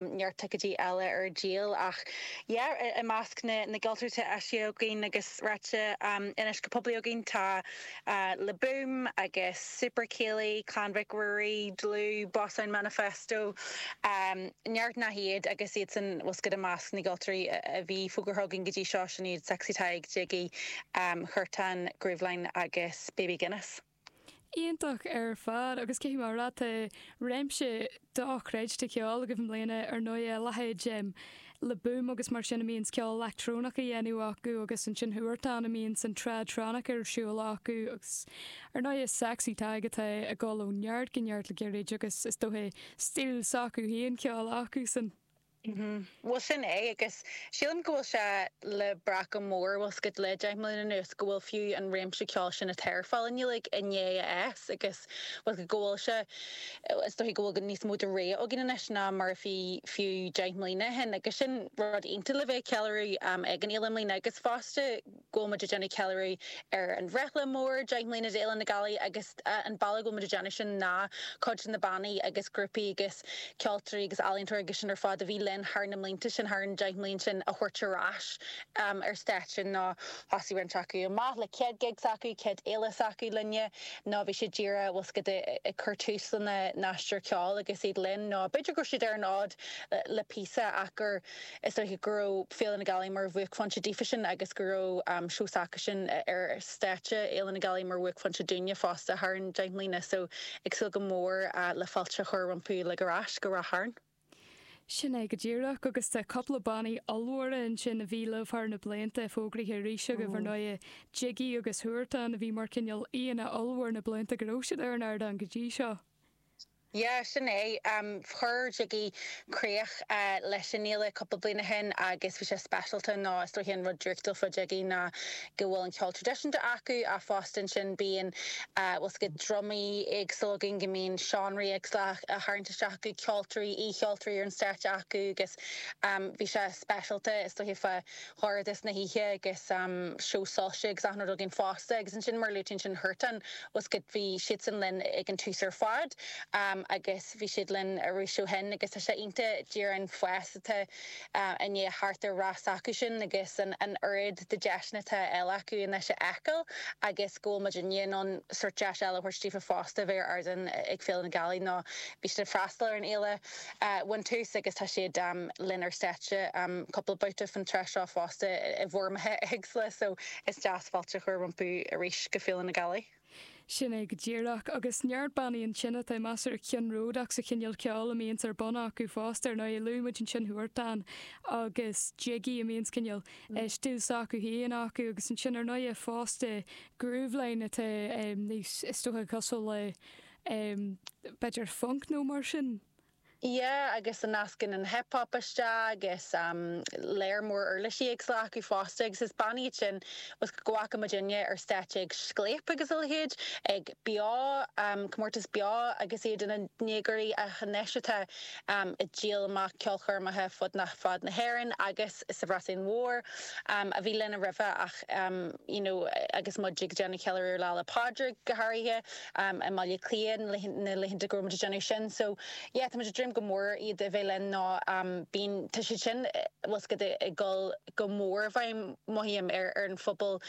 neart ticéidí eile ar díol ach yeah i measc na na gceoltóirí atá eisithe againn agus ráite anois go poiblí againn tá Le Boom agus Super Céilí, Clann Mhic Ruairí, Dlù, Boss Sound Manifesto, neart nach iad agus iadsan, bhfuil a fhios agat, i measc na gceoltóirí a bhí fógartha againn go dtí seo sin iad Sexy Tadhg, Jiggy, Huartan, Grooveline agus Baby Guinness. Iontach ar fad, agus caithfidh mé a rá tá réimse dochreidte ceoil agaibh i mbliana ar ndóigh, a leithéid Le Boom agus mar sin a mbíonns ceol leictreonach á dhéanamh acu agus ansin Huartan a mbíonns an tradtronic ar siúl acu agus ar ndóigh Sexy Tadhg atá ag dul ó neart go neart le gairid agus is dóiche stíl s'acu féin ceoil acusan. Mm-hmm. Bhuel sin é, agus sílim go bhfuil sé le brath go mór, bhfuil a fhios agat, le deich mbliana anuas, go bhfuil fiú an réimse ceoil sin atá ar fáil i nGaeilge i ndiaidh fás agus bhfuil a fhios agat go bhfuil sé, is dóiche go bhfuil go níos mó de rogha againn anois ná mar a bhí fiú deich mbliana ó shin agus sin rud iontach le bheith ag ceiliúradh ag an fhéile i mbliana agus fosta go bhfuil muid ag déanamh ceiliúradh ar an bhreithlá mór, deich mbliana d'Fhéile na Gealaí, agus an bealach a bhfuil muid ag déanamh sin ná cuid de na bannaí agus grúpaí agus ceoltóirí agus ealaíontóirí agus sin ar fad a bhí linn thar na mblianta sin, thar an deich mbliain sin, a thabhairt ar ais ar stáitse nó thosaigh roinnt acu amach le céad gig s'acu, céad fhéile s'acu linne, nó bhí siad díreach bhfuil a fhios agat ag cur tús lena n-aistear ceoil agus iad linn nó b'fhéidir go raibh siad ar an fhód le píosa ach gur Is dóiche go raibh Féile na Gealaí mar bhuaicphointe daofasan agus go raibh seó s'acusan ar stáitse Fhéile na Gealaí mar bhuaicphointe dúinne fosta thar an deich mbliana so ag súil go mór le fáilte a chur rompu uilig ar ais go Ráth Chairn. Sin é go díreach agus tá cúpla bannaí ollmhóra ansin a bhí libh thar na blianta fógraithe arís agaibh ar ndóighe, Jiggy agus Huartan a bhí mar cineál aíonna ollmhór na blianta go raibh siad ar an ardán go dtí seo. Yeah, sin é. Chuir Jiggy críoch leis an fhéile cúpla bliain ó shin agus bhí sé speisialta. Nó is dóiche an rud draíochtúil fá Jiggy ná go bhfuil an ceol traidisiúnta acu, ach fosta ansin bíonn, bhfuil a fhios agat, drumaí éagsúla againn go mbíonn seánraí éagsúla á tharraingt isteach acu, ceoltóirí, aoi-cheoltóirí ar an stáitse acu agus bhí sé speisialta, is dóiche, fá dhorchadas na hoíche agus seó soilse agus achan rud againn fosta agus ansin mar a luaigh tú ansin Huartan, bhfuil a fhios agat, bhí siadsan linn ag an tús ar fad agus bhí siad linn arís ó shin agus tá sé iontach díreach an fás atá i ndiaidh theacht ar rás s'acusan agus an oiread de deiseanna atá á fháil acu anois a fheiceáil agus go bhfuil muid i ndiaidh bheith in ann sórt deis eile a thabhairt daofa fosta bheith ar ardán ag Féile na Gealaí nó bhí siad ag freastal ar an fhéile ón tús agus tá siad lenár stáitse cúpla babhta faoin tráth seo fosta i bhfoirmeacha éagsúla so is deas fáilte a chur rompu arís go Féile na Gealaí. Sin é go díreach. Agus neart bannaí ansin atá measartha ceannródaíoch sa chineál ceoil a mbíonns ar bun acu fosta. Ar ndóigh, luaigh muid ansin Huartan agus Jiggy a mbíonns cineál stíl s'acu féin acu agus ansin ar ndóighe fosta Grooveline atá níos, is dócha cosúil le. em b'fhéidir funk nó mar sin. yeah agus a nascann an hip hop isteach agus em lear mór uirlisí éagsúla acu fosta agus is bannaí iad sin tá a fhios agat go bhfaca muidinne ar stáitse ag Scléip agus a leithéid ag Beo em comórtas Beo agus iad ina ndéagóirí ach anois atá em ag díol amach ceolchoirmeacha fud na fad na hÉireann agus sa Bhreatain Mhór em a bhí linne roimhe ach em you know agus muid ag déanamh ceiliúradh Lá 'le Pádraig go háirithe i mBaile Átha Cliath na laethanta go raibh muid ag déanamh sin. So yeah, tá muid ag dréim go mór iad a bheith linn nó bíonn, tá siad sin, tá a fhios agat, ag dul go mór i bhfeidhm, mothaím, ar an phobal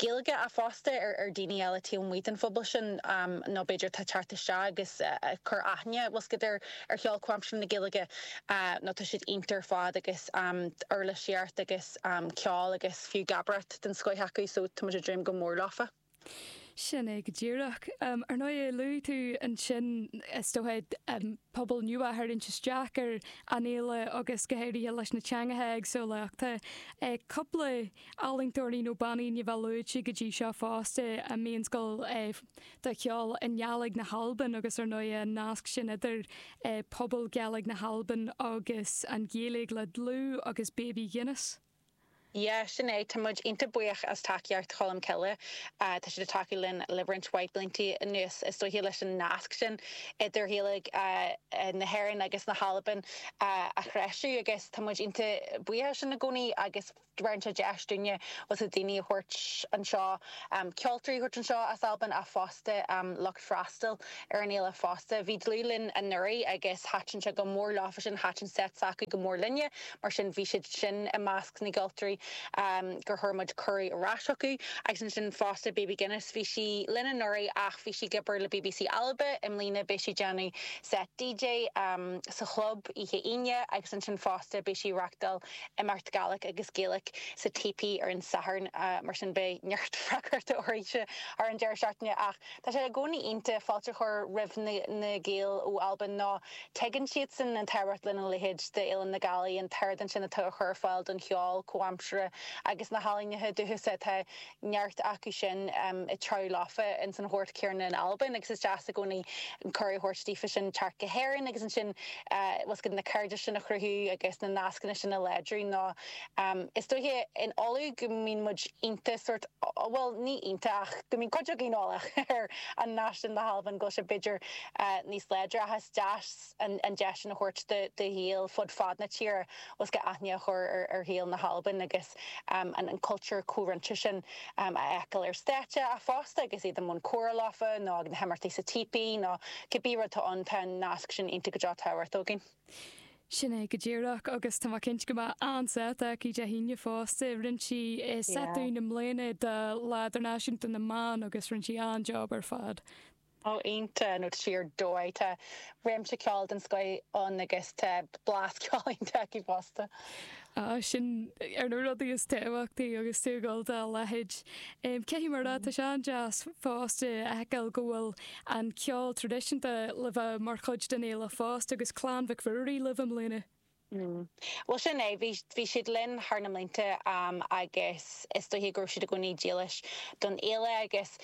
Gaeilge ach fosta ar daoine eile taobh amuigh den phobal sin nó b'fhéidir atá ag teacht isteach agus ag cur aithne, tá a fhios agat, ar cheol comhaimseartha na Gaeilge nó tá siad iontach ar fad agus uirlisíocht agus ceol agus fiú gabrat den scoith acu so tá muid ag dréim go mór leofa. Sin é go díreach. Ar ndóigh, luaigh tú ansin, is dócha, pobal nua a tharraingt isteach ar an fhéile agus go háirithe leis na teangacha éagsúla ach tá cúpla ealaíontóirí nó bannaí ní bheidh luaite go dtí seo fosta a mbíonns ag gabháil de cheol i nGàidhlig na hAlban agus ar ndóigh an nasc sin idir pobal Gàidhlig na hAlban agus an Ghaeilge le DLÙ agus Baby Guinness. Yeah, sin é. Tá muid iontach buíoch as tacaíocht Cholmcille. Tá siad ag tacú linn le roinnt mhaith bliantaí anuas, is dóiche, leis an nasc sin idir Ghaeilge na hÉireann agus na hAlban a threisiú agus tá muid iontach buíoch as sin i gcónaí agus bheireann sé deis dúinne, bhuel, daoine a thabhairt anseo, ceoltóirí a thabhairt anseo as Albain ach fosta lucht. freastal ar an fhéile fosta. Bhí DLÙ linn anuraidh agus thaitin sé go mór leofasan, thaitin seit s'acu go mór linne, mar sin bhí siad sin i measc na gceoltóirí gur chuir muid cuireadh ar ais chucu. Agus ansin fosta Baby Guinness, bhí sí linn anuraidh ach bhí sí ag obair le BBC Alba i mbliana, beidh sí ag déanamh seit DJ sa Chlub oíche Aoine agus ansin fosta beidh sí ag reachtáil imeacht Gàidhlig agus Gaeilge sa típí ar an Satharn, mar sin beidh neart freagrachta uirthi thar an deireadh seachtaine ach. Tá sé i gcónaí iontach fáilte a chur roimh na Gaeil ó Albain nó tuigeann siadsan an tábhacht lena leithéid d'Fhéile na Gealaí, an t-ardán sin atá á chur ar fáil don cheol comhaimseartha agus na healaíneacha dúchasa, tá neart acu sin ag treabhadh leofa ins an ghort céanna in Albain agus is deas i gcónaí cuireadh a thabhairt daofa sin teacht go hÉirinn agus ansin bhfuil a fhios agat na cairdis sin a chruthú agus na nascanna sin a láidriú nó Is dóiche in Uladh go mbíonn muid iontach sórt, bhuel, ní iontach ach go mbíonn cuid againn eolach ar an nasc sin le hAlbain, go bhfuil sé b'fhéidir níos láidre ach is deas an deis sin a thabhairt do Ghaeil fud fad na tíre bhfuil a fhios agat aithne a chur ar Ghaeil na hAlban agus an cultúr comhroinnte sin a fheiceáil ar stáitse ach fosta agus iad i mbun comhrá leofa nó ag na himeachtaí sa típí nó cibé rud tá ann, tá an nasc sin iontach go deo tábhachtach againn. Sin é go díreach, agus tá mé cinnte go mbeidh an-set aici Dé hAoine fosta. Rinne sí set dúinn i mbliana do Lá Idirnáisiúnta na mBan agus rinne sí an-job ar fad. Ó iontach nó tá sí ar dóigh, tá réimse ceoil den scoith ann agus tá blas ceoil iontach aici fosta. sin ar na rudaí is tábhachtaí agus tú ag dul dá leithéid. Caithfidh mé a rá tá sé an-deas fosta a fheiceáil go bhfuil an ceol traidisiúnta le bheith mar chuid den fhéile fosta agus Clann Mhic Ruairí libh i mbliana. Bhuel sin é, bhí siad linn thar na mblianta agus is dóiche go raibh siad i gcónaí dílis don fhéile agus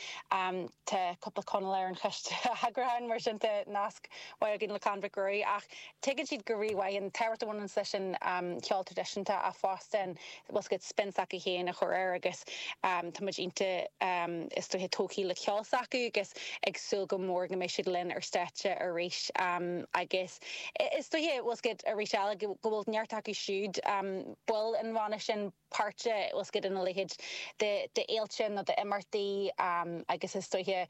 Tá cúpla Conallach ar an choiste eagrúcháin, mar sin tá nasc mhaith againn le Clann Mhic Ruairí, ach tuigeann siad go rí-mhaith an tábhacht a bhaineanns leis an cheol traidisiúnta ach fosta an bhfuil a fhios agat spin s'acu féin a chur air agus tá muid iontach is dóiche tógtha le ceol s'acu agus ag súil go mór go mbeidh siad linn ar stáitse arís agus is dóiche bhfuil a fhios agat arís eile go bhfuil neart acu siúd, baill an bhanna sin. páirteach bhfuil a fhios agat in a leithéid de fhéilte nó d'imeachtaí agus is dóiche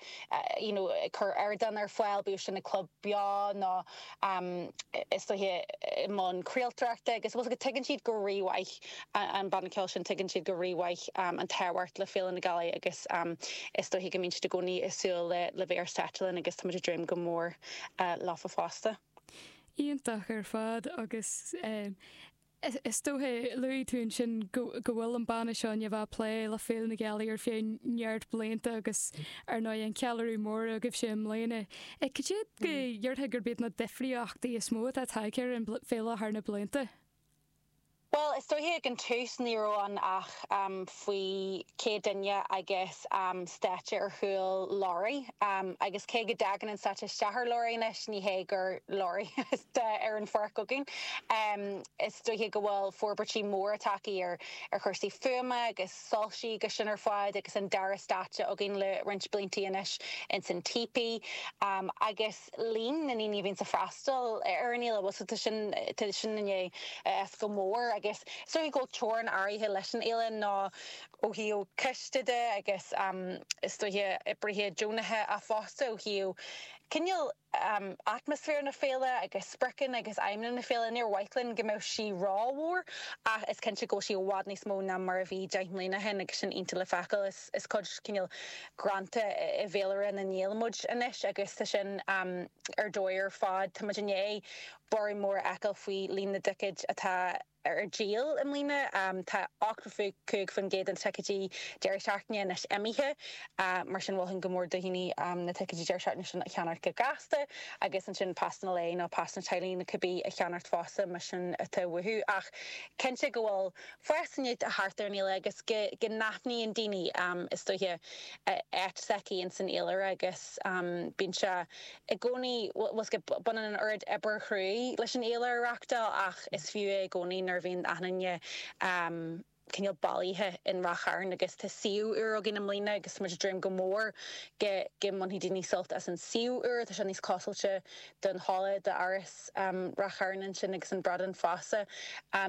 you know ag cur ardán ar fáil, bíodh sin ag club beo nó is dóiche i mbun craoltóireachta agus bhfuil a fhios agat tuigeann siad go rí-mhaith an banna ceoil sin tuigeann siad go rí-mhaith an tábhacht le Féile na Gealaí agus is dóiche go mbíonn siad i gcónaí ag súil le bheith ar stáitse linn agus táimid ag dréim go mór leofa fosta. Iontach ar fad agus eh. Is dóiche, luaigh tú ansin go bhfuil an banna seo i ndiaidh a bheith ag plé le Féile na Gealaí ar feadh neart blianta agus ar ndóigh an ceiliúradh mór agaibhse i mbliana. Cad iad go ndéarfá gurb iad na difríochtaí is mó atá tagtha ar an bhféile thar na blianta? Bhuel, is dóiche ag an tús ní raibh ann ach faoi 100 duine agus stáitse ar chúl lorraí agus cé go dtig an stáitse isteach ar lorraí anois ní hé gur lorraí ar an pháirc againn. Is dóiche go bhfuil forbairtí móra tagtha ar chúrsaí fuaime agus soilsí agus sin ar fad agus an dara stáitse againn le roinnt bliantaí anois ins an típí agus. líon na ndaoine a bhíonns ag freastal ar an fhéile, bhfuil a fhios agat, tá sin i ndiaidh fás go mór agus is dócha go bhfuil teorainn áirithe leis an fhéile ná ó thaobh coiste de agus is dócha oibrithe deonacha fosta ó thaobh cineál atmaisféar na féile agus spriocanna agus aidhmeanna na féile, níor mhaith linn go mbeadh sí ró-mhór ach is cinnte go bhfuil sí i bhfad níos mó ná mar a bhí deich mbliana ó shin agus sin iontach le feiceáil. Is cuid cineál greanta i bhféilire na nGael muid anois agus tá sin ar dóigh ar fad. Táimid i ndiaidh borradh mór a fheiceáil faoi líon na dticéad atá ar díol i mbliana. Tá 85% de na ticéidí deireadh seachtaine anois imithe, mar sin mholfainn go mór do dhaoine na ticéidí deireadh seachtaine sin a cheannacht go gasta agus ansin pasanna lae nó pasanna teaghlaigh nó cibé a cheannacht fosta, más sin atá uathu. Ach cinnte go bhfuil. Feasacht thart ar an fhéile agus go n-aithníonn daoine, is dóiche, an áit s'aici ins an fhéilire agus bíonn sé i gcónaí, bhfuil a fhios agat, baineann an oiread oibre chruaidh leis an fhéile a reachtáil ach is fiú é i gcónaí nuair a bhíonn aithne cineál bailithe in Ráth Chairn agus tá suíomh úr againn i mbliana agus tá muid ag dréim go mór go mbainfidh daoine sult as an suíomh úr, tá sé níos foscailte don halla d'Áras Ráth Chairn ansin agus an Bradán Feasa.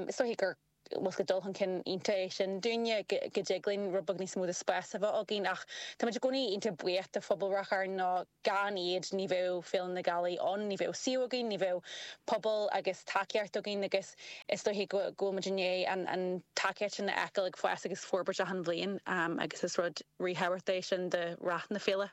Is dóichí gur dul chun cinn iontach é sin dúinne, go dtig linn rud beag níos mó de spás a bheith againn ach táimid i gcónaí iontach buíoch de phobal Ráth Chairn nó gan iad ní bheadh Féile na Gealaí ann, ní bheadh suíomh againn, ní bheadh pobal agus tacaíocht againn agus is dóichí go bhfuil muid i ndiaidh an tacaíocht sin a fheiceáil ag fás agus forbairt achan bhliain agus is rud ríthábhachtach é sin do rath na féile.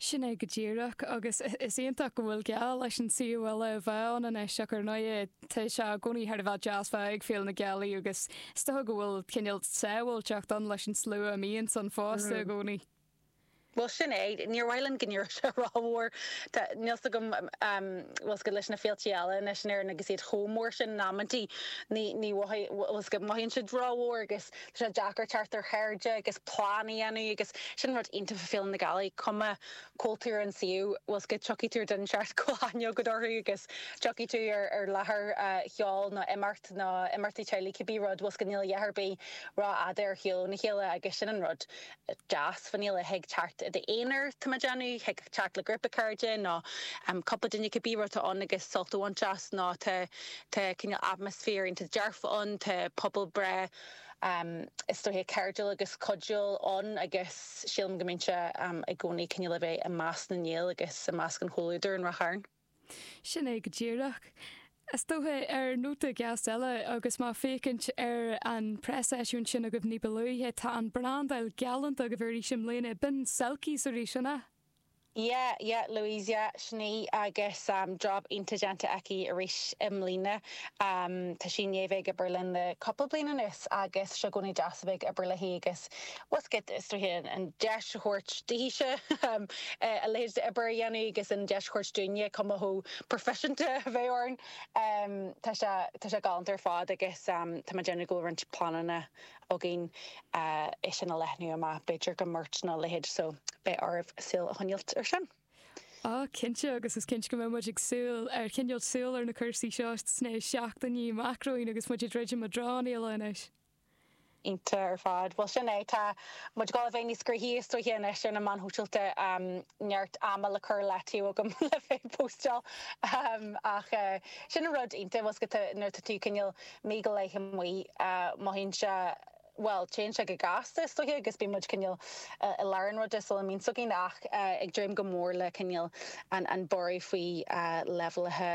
Sin é go díreach, agus is iontach go bhfuil glaoch leis an suíomh úr a bheith ann anois, ach ar ndóigh tá sé i gcónaí thar a bheith deas bheith ag Féile na Gealaí, agus is dócha go bhfuil cineál sábháilteacht ann leis an slua a mbíonns ann fosta i gcónaí. Bhuel sin é, níor mhaith linn go n-éireodh sé ró-mhór, tá, níl 's agam, bhfuil 's agat leis na féiltí eile anois in Éirinn agus iad chomh mór sin in amantaí, ní, ní mhothaíonn, bhfuil 's agat mothaíonn siad ró-mhór agus. Tá sé deacair teacht ar chairde agus plean a dhéanamh agus sin an rud iontach fá Féile na Gealaí, cuma cá háit ar an suíomh, bhfuil 's agat tiocfaidh tú ar daoine éigin a bhfuil aithne agat orthu agus tiocfaidh tú ar láthair cheoil nó imeacht nó imeachtaí teaghlaigh cibé rud, bhfuil 's agat níl a dhath ar bith ró fhada ar shiúl óna chéile agus sin an rud. deas faoin fhéile, thig teacht i d'aonar, tá mé ag déanamh, thig teacht le grúpa cairde nó cúpla duine cibé rud atá ann agus sult a bhaint as nó tá tá cineál atmaisféar iontach dearfa ann, tá pobal breá is dóiche cairdiúil agus cuidiúil ann agus sílim go mbíonn sé i gcónaí cineál le bheith i measc na nGael agus i measc an chomhluadair in Ráth Chairn. Sin é go díreach. Is dócha, ar nóta gasta eile, agus mé ag féachaint ar an preaseisiúint sin agaibh ní ba luaithe, tá an brandáil galánta agaibh arís i mbliana. B'in Selkies arís, an ea? Yeah, yeah, Louise, yeah, sin í, agus job iontach déanta aici arís i mbliana. Tá sí i ndiaidh bheith ag obair linn le cúpla bliain anuas, agus tá sé i gcónaí deas a bheith ag obair léi, agus bhfuil 's agat, is dóiche, an deis a thabhairt daoithese a leithéid d'obair a dhéanamh agus an deis a thabhairt dúinne cuma chomh proifiseanta a bheith orainn. Tá sé, tá sé galánta ar fad agus tá mé ag déanamh go bhfuil roinnt pleananna againn é sin a leathnú amach, b'fhéidir go merch nó a leithéid, so beidh oraibh súil a choinneáilt ar sin. Á, cinnte, agus is cinnte go mbeidh muid ag súil, ag coinneáilt súil ar na cúrsaí seo sna seachtainí amach romhainn agus muid ag druidim i dtreo an Fhéile anois. Cinnte ar fad. Bhuel, sin é. Tá muid ag dul a bheith níos gnoithí is dóiche anois ar na meáin shóisialta. Neart ama le cur i leataobh agam le bheith ag póstáil. Ach sin an rud iontach, bhuel, nuair atá tú cineál mí go leith amuigh, mothaíonn sé, bhuel, téann sé go gasta is dóiche agus bíonn muid cineál i lár an ruda sula mbíonn 's againn ach ag dréim go mór le cineál an borradh faoi leibhéalaithe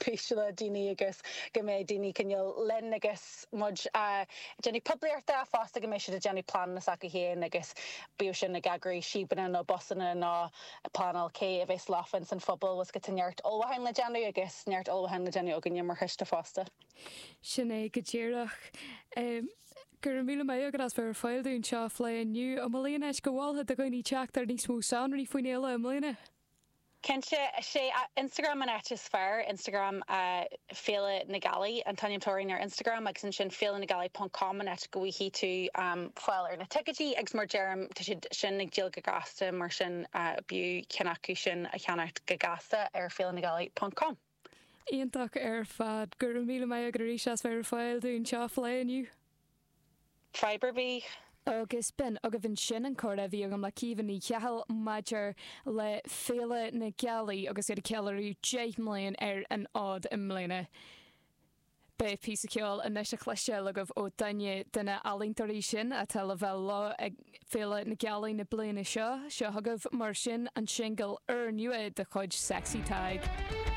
péisteanna daoine agus go mbeidh daoine cineál linn agus muid a' déanamh poiblíochta fosta go mbeidh siad a' déanamh pleananna s'acu fhéin agus bíodh sin ag eagrú síobanna nó busanna nó a' pleanáil cé a bheas leofa insan phuball agus go bhfuil neart ullmhúcháin le déanamh agus neart ullmhúcháin le déanamh againne mar choiste fosta. Sin é go díreach. Go raibh míle maith agat as bheith ar fáil dúinn seo a phlé inniu. An bhfuil aon áit go molfá do dhaoine teacht ar níos mó sonraí faoin fhéile i mbliana? Cinnte, is é Instagram an áit is fearr, Instagram Féile na Gealaí an t-ainm atá orainn ar Instagram agus ansin feilenagealaí ponc com an áit go bhfaighidh tú fáil ar na ticéidí agus mar deirim tá siad sin ag díol go gasta mar sin b'fhiú ceann acu sin a cheannacht go gasta ar feilenagealaí ponc com. Iontach ar fad. Go raibh míle maith agat arís as bheith ar fáil dúinn seo a phlé inniu. Fadhb ar bith? Agus b'in agaibh ansin an comhrá a bhí agam le Caoimhe Ní Chathail maidir le Féile na Gealaí agus iad ag ceiliúradh 10 mbliana ar an fhód i mbliana. Beidh píosa ceoil anois a chloisteáil agaibh ó duine de na healaíontóirí sin atá le bheith leo ag Féile na Gealaí na bliana seo. Seo chugaibh mar sin an singil úr nua de chuid Sexy Tadhg.